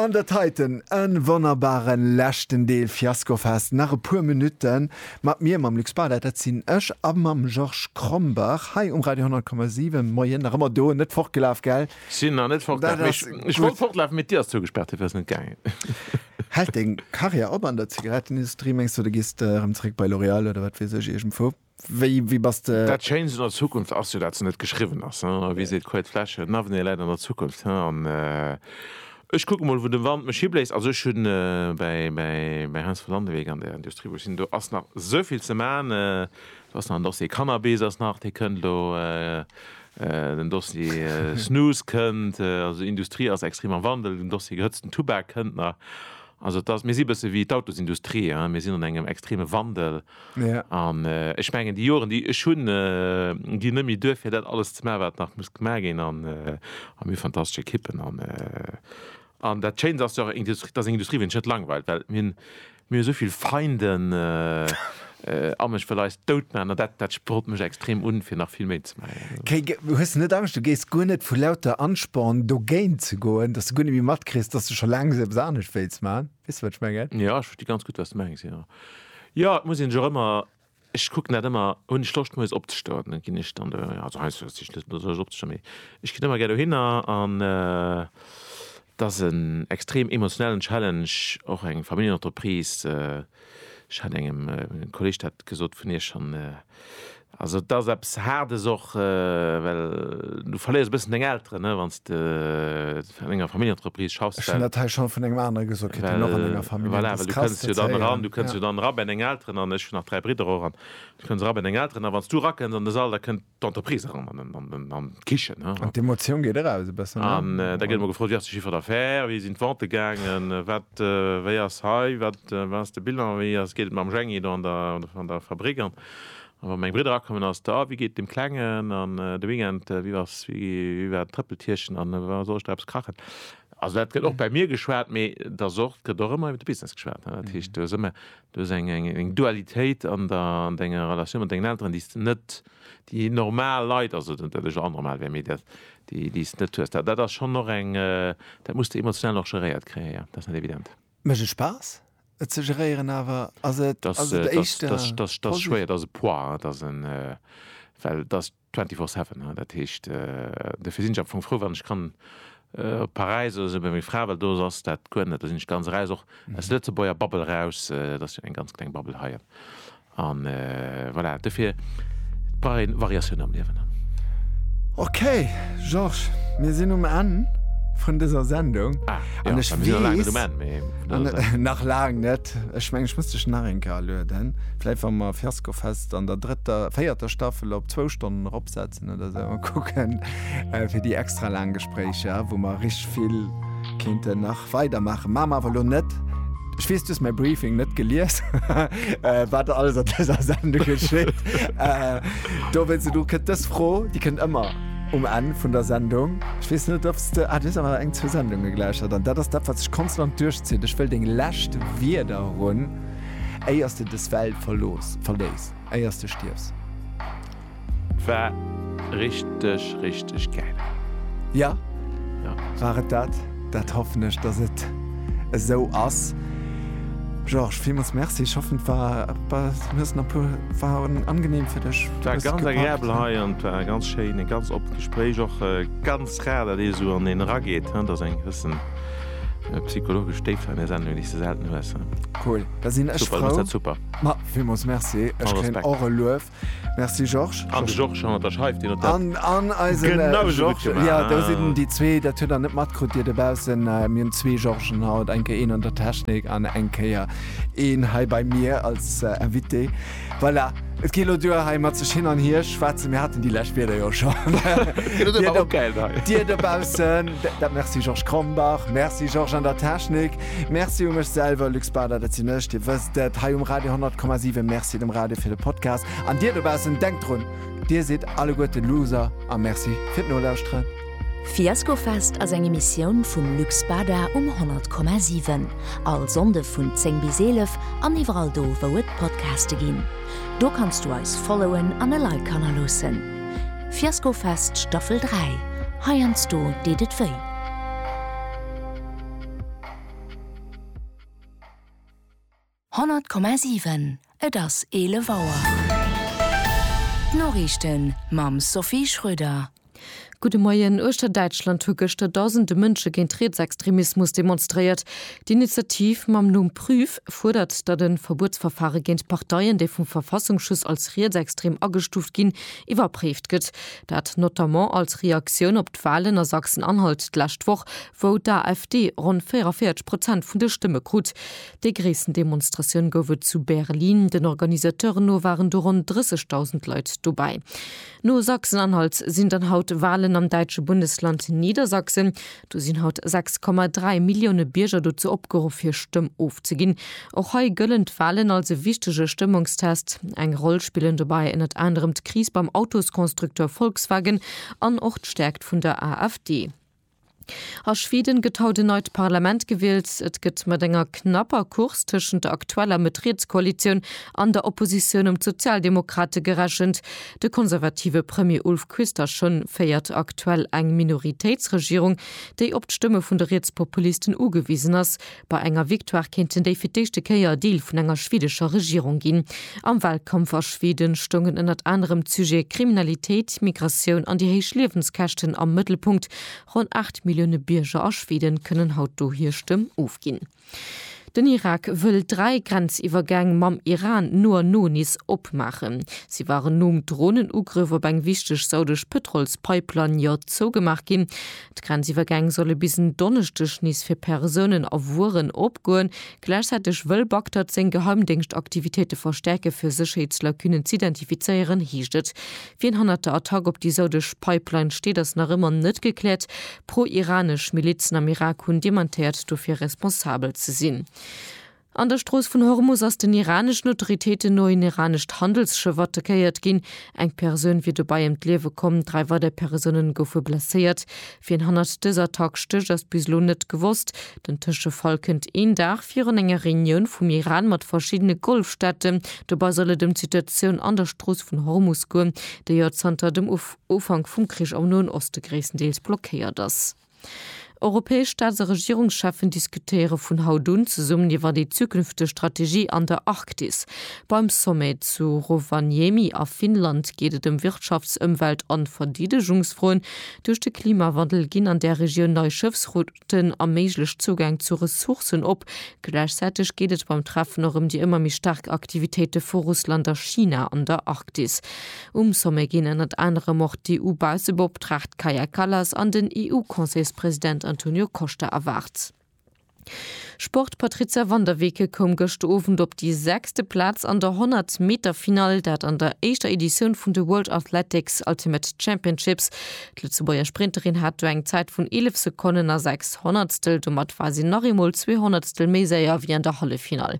An dat heiten e wonnerbare leschten Deel Fiaskofest. Nach e puer Minutte mat mir, mam Luc Bauder, dat sinn ech, a mam Georges Krombach hei um Radio 100,7. Moien, nach ëmmer do, net fortgelaf, gell? Sinn nach net fortgelaf, mee ech wollt fortlafen, mee d'Dier ass zougespaart, duerfir ass net gaangen. Hält deng Karriär op an der Zigarettenindustrie, mengs de? Oder gees de erëm zeréck bei L'Oréal oder wat weess ech, iergendwou? Wéi bass de? Dat Schéinst un der Zukunft ass jo, dat se net geschriwwen ass. Wéi seet d'Couët Flesche, en Avenir läit an der Zukunft. An ech kucken emol, wou de Wand mech hibléist. Also ech hunn bei Heinz von Landewyck an der Industrie, wou ech sinn, do ass nach esou vill ze maachen. Do ass nach en Dossier Cannabis ass nach, dee kënnt elo, den Dossier Snus kënnt. Also d'Industrie ass extrem am Wandel. Den Dossier gehëtzten Tubak kënnt nach. Also et ass, mir si e bësse wéi d'Autosindustrie, mir sinn an engem extreme Wandel. An ech mengen, déi Joren, déi ech hunn, ginn net méi duer, fir dat alles ze maachen, wat nach muss gemaach ginn. An mir hu fantastesch Ekippen. An dat Schéint ass jo och, dass eng Industrie wéi ons net langweilt, well mir hunn esou vill Feinden am Ech wëll eis dout maachen. An dat sprot mech extrem un, fir nach vill méi ze maachen. Hues de net Angscht, du géiss guer net vu lauter Ansporn dogéint ze goen, dass du guer net méi matkriss, dass du scho laang eppes anescht wéilts maachen? Weess de wat ech mengen? Jo, ech versti ganz gutt wat s de mengs, jo. Jo, et muss een sech och ëmmer, ech kucken dat ëmmer, hunn ech Loscht moies opzestoen, da ginn ech dann do, also heiansdo hues de just net Loscht opzestoen, mee ech ginn ëmmer gär dohinner an et ass en extrem emotionellen Challenge, och eng Familljenentreprise. Ech hat engem Kolleeg dat gesot vun iech an. Also et ass eppes Haardes och, well du verléiers e bëssen deng Elteren, ne, wann s de an enger Familljenentreprise schaffs. Ech hunn dat hei schonn vun engem anere gesot kritt, deen och an enger Familljen ass. Voilà, well du kënns jo dann eran, du kënns jo dann era bei deng Elteren an ech hunn nach dräi Bridder och an du kënns era bei deng Elteren a wann s du erakënns an de Sall, da kënnt d'Entreprise eran an d'Kichen. An d'Emotioun geet eraus e bëssen. An da gëtt emol gefrot, Wéi ass de Chiffre d'affaires? Wéi sinn d'Vente gaangen? Wat, wéi ass hei? Wat? Wat ass de Bilan? Wéi ass, geet et mam Jhäng-i do an der, an der Fabrik? An wa meng Bridder akommen ass da, wéi geet dem Klengen? An de Weekend, wéi ass, wéi, wéi war d'Trëppeltierchen? An wa soll ech da eppes kachen? Also dat gëtt och bei mir geschwat, mee et ass och, et gëtt och ëmmer iwwer de Business geschwat, ne. Dat heescht, du hues ëmmer, du hues eng, eng, eng Dualitéit an der, an denger Relatioun mat dengen Elteren, déi s de net, déi normal Leit, also net dat ech elo anormal wär, mee dat, déi, déi s de net hues. Dat, dat ass schonn och eng, dat muss de emotional och geréiert kréien, jo, dat ass net evident. Mécht et Spaass, et ze geréieren, awer ass et Dat ass et éischter dat ass dat ass schwéier, dat ass e Poids, hein, dat ass en well dat ass twenty four seven, hein, dat heescht dofir sinn ech am Fong frou wann ech kann op Paräis oder esou bei menger Fra, well do ass dat guer net, do sinn ech ganz eraus och aus der Lëtzebuerger Bubble eraus, dat ass jo eng ganz kleng Bubble hei. A voilà, dofir brauch een Variatioun am Liewen. Ok, Georges, mir sinn um Enn vun dëser Sendung. Ah, jo, mir sinn nach laang net um Enn, mee vun dëser Sendung. Nach laang net. Ech mengen, ech muss dech nach eng Kéier alueden, vläicht wa mer Fiaskofest an der drëtter, véierter Staffel op zwou Stonnen eropsetzen. Oder se mer kucken fir déi extra laang Gespréicher, wou mer rich vill kéinte nach weider maachen. Mam awer lo net. Ech weess, du hues mäi Briefing net gelies, wat alles an dëser Sendung geschitt. Do wëll se du kënnt dës Fro, déi kënnt ëmmer um Enn vun der Sendung. Ech weess net, ob s de. Ah, du hues awer eng, zwee Sendunge gelauschtert an dat ass dat, wat sech konstant duerchzitt. Ech wëll deng lescht Wierder hunn, éier s de dës Welt verlooss, verléiss, éier s de stierfs. War richteg richteg gäil. Ja, war et dat? Dat hoffen ech, dass et esou ass. Georges, villmools Merci. Ech hoffen, et war, du hues nach puer, war angenehm fir dech. Et war ganz agreabel hei an et war ganz schéin, e ganz oppent Gespréich. Och ganz rar, datt ee sou an een erageet, datt ass eng gewëssen psychologesch Déift, an där Sendung, déi s de selten hues. Cool, da sinn ech frou. Super, du hues dat super. Ma, villmools Merci. Ech kréien och e Luef. Merci Georges. An de Georges hannert der Scheif, deen huet dat genausou gutt gemaach. Jo, do sinn déi zwee, dat hutt der net matkrut, Dir dobaussen. Mir hunn zwee Georges'en haut, eng Kéier een an der Technik an eng Kéier een hei bei mir als Invité. Voilà, et geet elo duer hei mat sech hin an hier schwätzen. Mir haten déi lescht Wierder jo scho. Dir dobaussen, dat Merci Georges Krombach, Merci Georges an der Technik. Merci u mech selwer, Luc Spada, dat sinn ech, Dir wësst et, hei um Radio 10,7. Merci dem Radio fir de Podcast. An Dir dobaussen, denkt drun, Dir sidd alleguerten Loser a Merci fir d'Nolauschteren. Fiaskofest ass eng Emissioun vum Luc Spada um 100,7. All Sonnde vun 10 bis 11 an iwwerall do, wou et Podcaste ginn. Do kanns du eis followen an e Like hannerloossen. Fiaskofest Staffel 3, heiansdo deet et wéi. Honnert Komma siwen Et ass 11 Auer. D'Noriichten mam Sophie Schröder. Gudde Moien. Uechter Däitschland hu gëschter Dausende Mënsche géint Rietsextremismus demonstréiert. D'Initiativ mam Numm Prüf fuerdert, datt e Verbuetsverfare géint Parteien, déi vum Verfassungsschutz als rietsextrem agestuuft ginn, iwwerpréift gëtt. Dat notamment als Reaktioun op d'Walen a Sachsen-Anhalt d'lescht Woch, wou d'AfD ronn 44 Prozent vun de Stëmme krut. Déi gréissten Demonstratioun gouf et zu Berlin. Den Organisateuren no waren do ronn 30.000 Leit dobäi. No Sachsen-Anhalt sinn dann haut Walen am däitsche Bundesland Niedersachsen. Do sinn haut 6,3 Millioune Bierger dozou opgeruff, hir Stëmm ofzeginn. Och hei gëllen d'Walen als e wichtege Stëmmungstest. Eng Roll spillen dobäi ënnert anerem d'Kris beim Autosconstructeur Volkswagen an och d'Stäerkt vun der AfD. A Schweden gëtt haut en neit Parlament gewielt. Et gëtt mat enger knapper Course tëschent der aktueller Mëtt-Riets-Koalitioun an der Oppositioun ëm d'Sozialdemokrate gerechent. De konservative Premier Ulf Kristersson féiert aktuell eng Minoritéitsregierung, déi op d'Stëmme vun de Rietspopulisten ugewisen ass. Bei enger Victoire kéinten déi fir d'éischte Kéier Deel vun enger schwedescher Regierung ginn. Am Walkampf a Schwede stoungen ënnert anerem d'Sujete Kriminalitéit, Migratioun an déi héich Liewenskäschten am Mëttelpunkt. Ronn 8 Millioune Bierger a Schwede kënnen haut do hir Stëmm ofginn. Den Irak wëll dräi Grenziwwergäng mam Iran no a no nees opmaachen. Si waren nom Dronenugrëff op eng wichteg saudesch Pëtrolspipeline jo zougemaach ginn. D'Grenziwwergäng solle bis en Donneschdeg nees fir Persounen a Wueren opgoen. Gläichzäiteg wëll Bagdad seng Geheimdéngschtaktivitéite verstäerke fir Sécherheetslacunen z'identifizéieren, heescht et. Wien hannert der Attack op déi saudesch Pipeline steet, ass nach ëmmer net gekläert. Pro-iranesch Milizen am Irak hunn dementéiert, dofir responsabel ze sinn. An der Strooss vun Hormus ass den iraneschen Autoritéiten no een iranescht Handelsschëff attackéiert ginn. Eng Persoun wier dobäi ëm d'Liewe komm, dräi weider Persounen goufe blesséiert. Wien hannert dëser Attack stécht, ass bis elo net gewosst. Den Tëschefall kënnt een Dag virun enger Reunioun vum Iran mat verschiddene Golfstaaten. Dobei soll et ëm d'Situatioun an der Strooss vun Hormus goen, déi jo zanter dem Ufank vum Krich am Noen Oste gréisstendeels blockéiert ass. Europäesch Staats a Regierungscheffen diskutéiere vun haut un zesummen iwwer déi zukünfteg Strategie an der Arktis. Beim Sommet zu Rovaniemi a Finnland geet et ëm Wirtschafts-, Ëmwelt an Verdeedegungsfroen. Duerch de Klimawandel ginn an där Regioun nei Schëffsrouten a méiglech Zougäng zu Ressourcen op. Gläichzäiteg geet et beim Treffen och ëm déi ëmmer méi staark Aktivitéite vu Russland a China an der Arktis. Um Sommet ginn ënnert anerem och d'EU-Baussebeoptraagt Kaja Kallas an den EU-Conseilspresident Antonio Costa erwaart. Sport, Patrizia van der Weken koum gëscht Owend op déi sechste Plaz an der 100 Meter Finall, dat an der éischter Editioun vun de World Athletics Ultimate Championships. D'Lëtzebuerger Sprinterin hat do eng Zäit vun 11 Sekonnen a 6 Honnertstel. Domat war si nach eemol zwee Honnertstel méi séier wéi an der Halleffinall.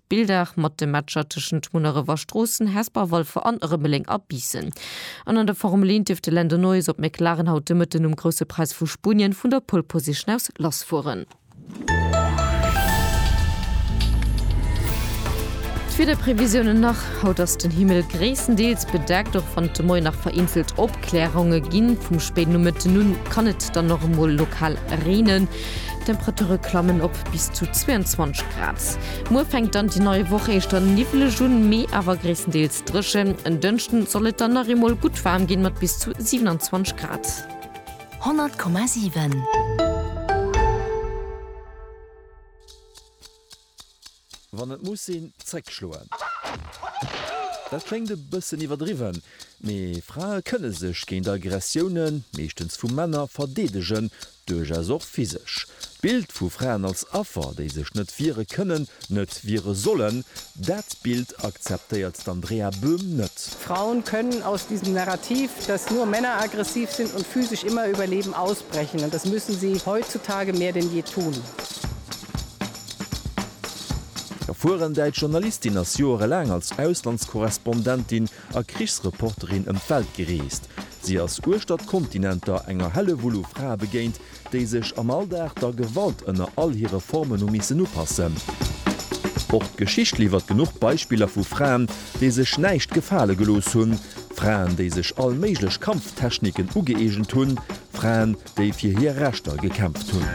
Bildaac mat de Matcher tëschent Munnerewer Stroossen, Hesper, Walfer an Rëmeleng a Biissen. An an der Formel 1 dierft de Lando Norris op McLaren haut de Mëtten um Grousse Präis vu Spunien vun der Pole Position aus lass fueren. D'Wiederprevisiounen nach, Haut ass den Himmel gréisstendeels bedeckt, och wann et de Moien nach vereenzelt Opkläronge ginn. Vum spéiden Nomëtten un kann et dann och emol lokal reenen. D'Temperature klammen op bis zu 22 Grad. Muer fänkt dann déi nei Woch éischter niwweleg un, mee awer gréisstendeels dréchen. En Dënschden soll et dann nach eemol gutt waarm ginn, mat bis zu 27 Grad. 100,7. Wann et muss sinn, zréck schloen. Dat kléngt e bëssen iwwerdriwwen, mee Frae kënne sech géint Aggressiounen, meeschtens vu Männer, verdeedegen, duerchaus och physesch. D'Bild vu Fraen als Affer, déi sech net wiere kënnen, net wiere sollen, dat Bild akzeptéiert d'Andrea Böhm net. Frauen können aus diesem Narrativ, dass nur Männer aggressiv sind und physisch immer überleben, ausbrechen. Und das müssen sie heutzutage mehr denn je tun. Erfueren däitsch Journalistin ass joerelaang als Auslandskorrespondentin a Krichsreporterin ëm d'Welt gereest. Si ass uechter d'Kontinenter enger Hellewull u Frae begéint, déi sech am Alldag der Gewalt ënner all hire Formen hu missen upassen. Och d'Geschicht liwwert genuch Beispiller vu Fraen, déi sech näischt gefale gelooss hunn, Fraen, déi sech all méiglech Kampftechniken ugëeegent hunn, Fraen, déi fir hir Rechter gekämpft hunn.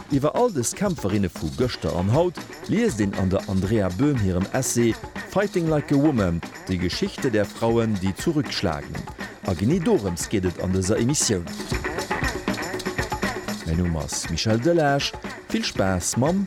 Iwwer all dës Kämpferinne vu gëschter an haut liest een an der Andrea Böhm hirem Essay Fighting like a woman, Die Geschichte der Frauen, die zurückschlagen. A genee dorëms geet et an dëser Emissioun. Mäi Numm ass Michel Delage, vill Spaass mam.